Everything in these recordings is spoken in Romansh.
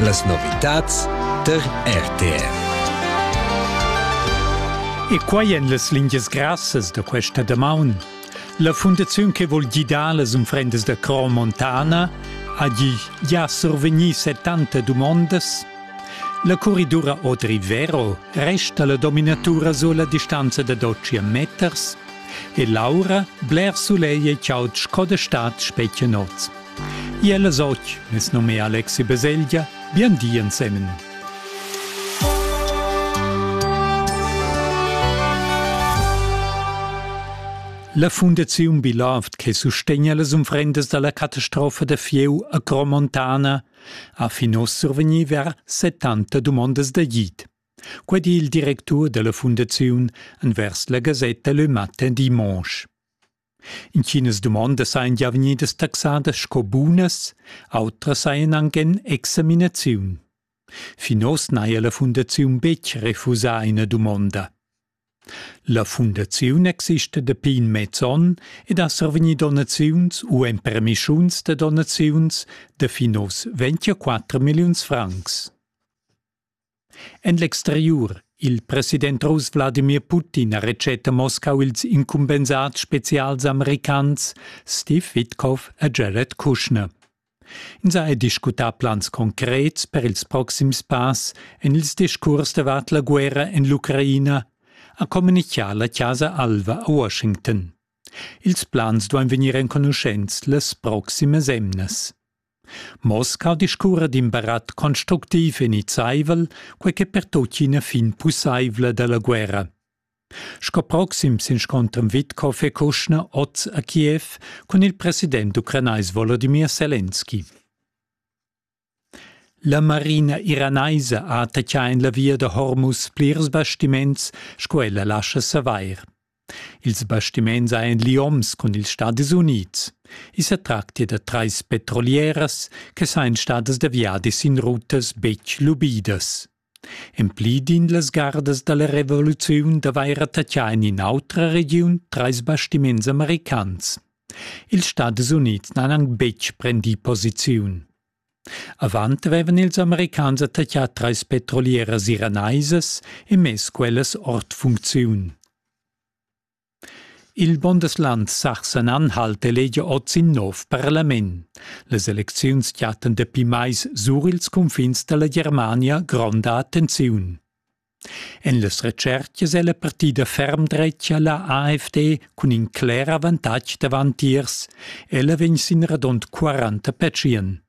Las novitads tar RTR. E quai en las lingias grassas da questa damaun. La fundaziun che vul gidar las unfrendas da Cro Montana ha gi già survegnì 70 dumondas. La corridura Odri Vero resta la dominatura sulla distanza da 12 meters e l'aura bler sulegl e chaud sco da stad spetga noz. Iel es och, es nom è Alexi Beseglia, bien di ensemen. La Fundaziun Bilavt che sustegna las umfrendas dalla catastrofa da Fieu a Cromontana ha fin oss survegni ver 70 dumondas d'agid. Quei di il directur dalla fundaziun envers la gasetta Le Matin dimanche. Intginas dumondas ein gia vegnidas taxadas sco bunas, autras ein aunc en examinaziun. Fin oz n'haja la fundaziun betg refusà ina dumonda. La fundaziun exista dapi in mez onn ed ha survegni donaziuns u empermischuns da donaziuns da fin oz 24 milliuns francs. En l'exteriur Il president russ Wladimir Putin ha retschet a Moscau ils incumbensads spezials americans Steve Witkoff e Jared Kushner. Ins ha discutà plans concrets per ils proxims pass en ils discurs davart la guerra en l'Ucraina, ha communichà la Chasa Alva a Washington. Ils plans duain vegnir enconuschents las proximas emnas. Mosca discurra d'in barat constructiv e nizzaivel, quei che pertuccina fin pusseivla dalla guerra. Sco proxim s'inscontran Witkow e Kuschner oz a Kiev cun il president ucranais Volodymyr Selenski. La marina iranaisa ha attaccà en la via da Hormuz plirs bastiments, sco ella lascha savair. Ils bastiments ein lioms cun ils Stadis Unids. I sa tractia da trais petrolieras che sain stadas da viadis in rutas betg lubidas. En pli din las gardas da la revoluziun d'avair attaccà en in'autra regiun trais bastiments americans. Ils Stadis Unids n'han anc betg prendì posiziun. Avant vevan ils Americans attaccà trais petrolieras iranaisas e mess quellas ord funcziun. Il Bundesland Sachsen-Anhalt elegia oz in nov parlament. Las elecziuns chattan dapi mais sur ils cunfins dalla Germania gronda attenziun. En las retschertgas è la partida ferm dretga la AfD cun in cler avantatg davantiers. Ella vegn sin radund 40 petschien.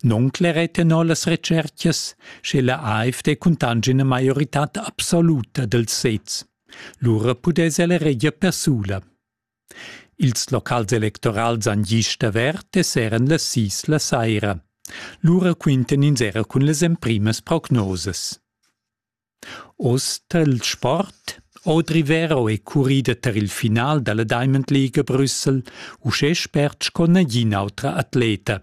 Non clerè tenor las retschertgas, sche la AfD cuntange ina maioritad absoluta dels sezs. Lura pudess ella reger persula. Ils locals electorals han gist avert e seran las sis la saira. Lura quintan ins era cun las emprimas prognosas. Oz tar il sport Audri Vero è currida tar il final da la Diamond League a Brüssel, uschè spert sco nagin'autra atleta.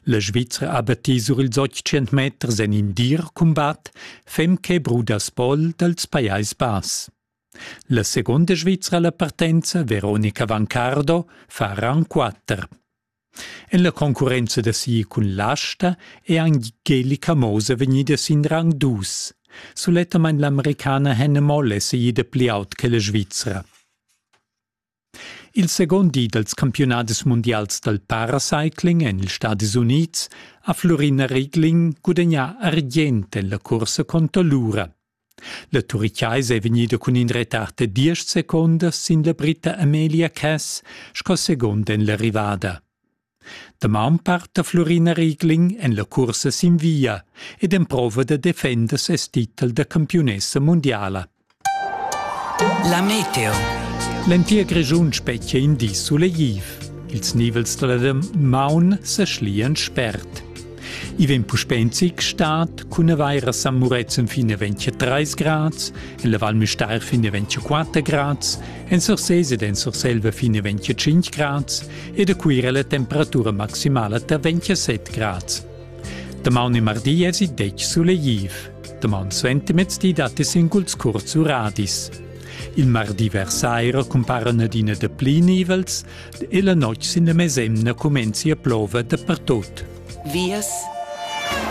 La Svizra abattì sur ils 800 meters en in dir cumbat, fem che bruda spol dals Pajais Bass. La seguonda Svizra alla partenza, Veronica Vancardo, fa ran quatter. En la concurrenza da si cun l'asta è Angelika Mose vegnida sin rang dus. Sulettamain l'americana Hannah Moll è seguida pli aut che la Svizra. Il second di dals campiunadis mundials dal paracycling en ils Stadis Unids ha Flurina Riegling gudagnà argient en la cursa conter l'ura. La turichaisa è vegnida cun in retard da diesch secondas sin la Britta Amelia Cass sco segund en l'arrivada. Damaun parta Flurina Riegling en la cursa sin via ed emprova da defender ses titel da campiunessa mundiala. La meteo. L'entir Grischun spetgia in di sulegtiv. Ils nivels dalla maun sa schlian spert. I vegn puspè in zic stat cun avair a San Murezzan fin a 23 grads, en la Val Müstair fin a 24 grads, en Sursés ed en Surselva fin a 25 grads e da Cuira la temperatura maximala da 27 grads. Damaun e mardi es il detg sulegtiv. Damaun suentermezdi dat es singuls curts uradis. Il mardi vers saira cumparan adina da pli nivels, e la notg sin la mesemna cumenzi a plover dapertut. Vias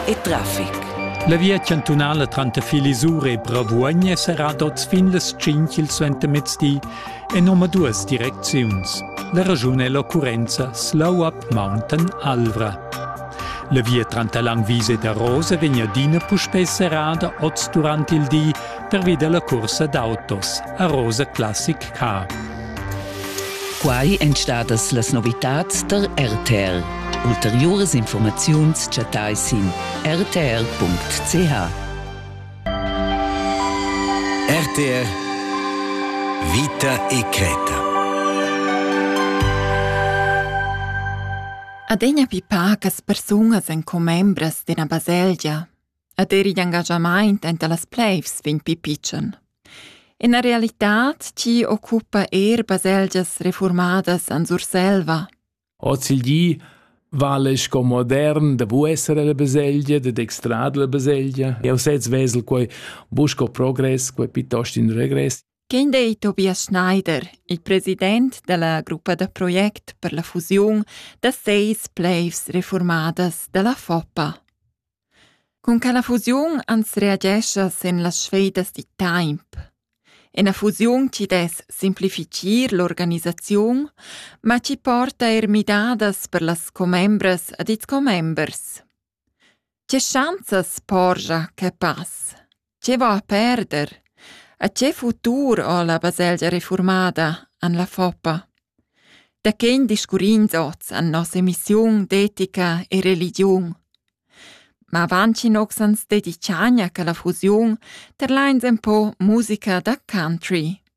e traffic. La via chantunala tranter Filisur e Bravuogn è serrada oz fin las 5 il suentermezdi en omaduas direcziuns. La ragiun è l'occurrenza Slow Up Mountain Alvra. La via tranter Langwiese e Rose vegn adina puspè serrada oz durant il di pervi dalla cursa d'autos a Rosa Classic Car. Quai èn stadas las novitads tar RTR. Ulteriuras informaziuns chattai sin rtr.ch. RTR Vita e Creta. Adegna pipa che persunas en commembras d'ina baselgia Ed er igl engaschamaint enta las pleivs vegn pi pitschen. Ina realitad chi occupa eir baselgias refurmadas en Surselva. Ozilgi vale sco modern de vu essere la baselgia, de dextrad la baselgia. Eu sez vesel quei busco progress, quei piuttost in regress. Quem dei Tobias Schneider, il president della gruppa da project per la fusiun da seis pleivs reformadas della Foppa? Cun quella fusiun ans reagescha sin las sfedas da temp. Ina fusiun chi dess simplifitgir l'organisaziun, ma chi porta eir midadas per las commembras ed ils commembers. Che schanzas porgia que pass? Che va a perder? A che futur ho la baselgia reformada an la Foppa? Da chen discurrins oz an nossa emissiun d'etica e religiun? Ma vantin ox ans dediciania che la fusiun terlains en po musica da country.